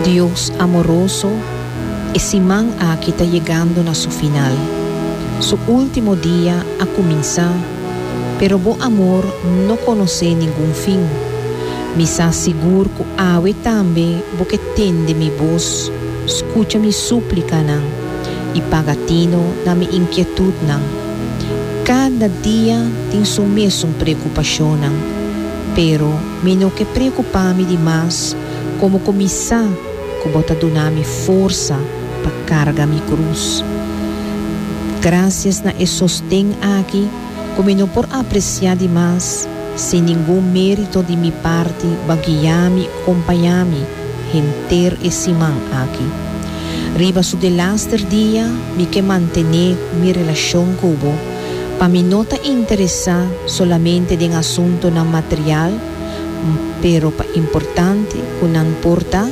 Dios amoroso, e siman aki ta yegando na su final. Su ultimo dia a cuminsa, pero bo amor no conoce ningun fin. Mi sa sigur cu awe tambe bo ke tende mi boz, scucha mi suplicanan y paga tino na mi inquietudnan. Cada dia tin su mesun preocupacionnan, pero. Mi no ke preokupá mi di mas komo ku mi sa ku bo ta duna mi forsa pa karga mi krus. Grasias na e sosten aki ku mi no por apresiá di mas, sin ningun mérito di mi parti bo a guiá mi i kompañá mi henter e siman aki. Riba su delaster dia mi ke mantené mi relashon ku bo, Pa mi no ta interesá solamente den asuntunan material, m pero pa importante ku nan por ta,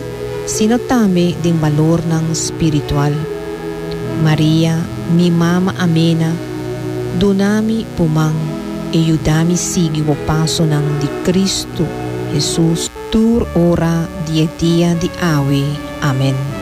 sino tambe den balornan spiritual. Maria, mi mama amena, duna mi bo man e yuda mi sigui bo pasonan di Kristu Hesus tur ora di e dia di awe. Amen.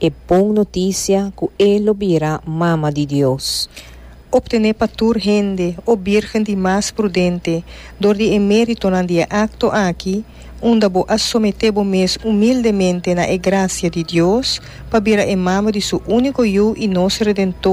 e bon notisia cu e lo bira Mama di Dios. Obtene pa tur hende, o Birgen di mas prudente, dor di e meritonan di e acto aki, unda bo a somete bo mes humildemente na e gracia di Dios, pa bira e Mama di Su unico Yu y nos Redentor,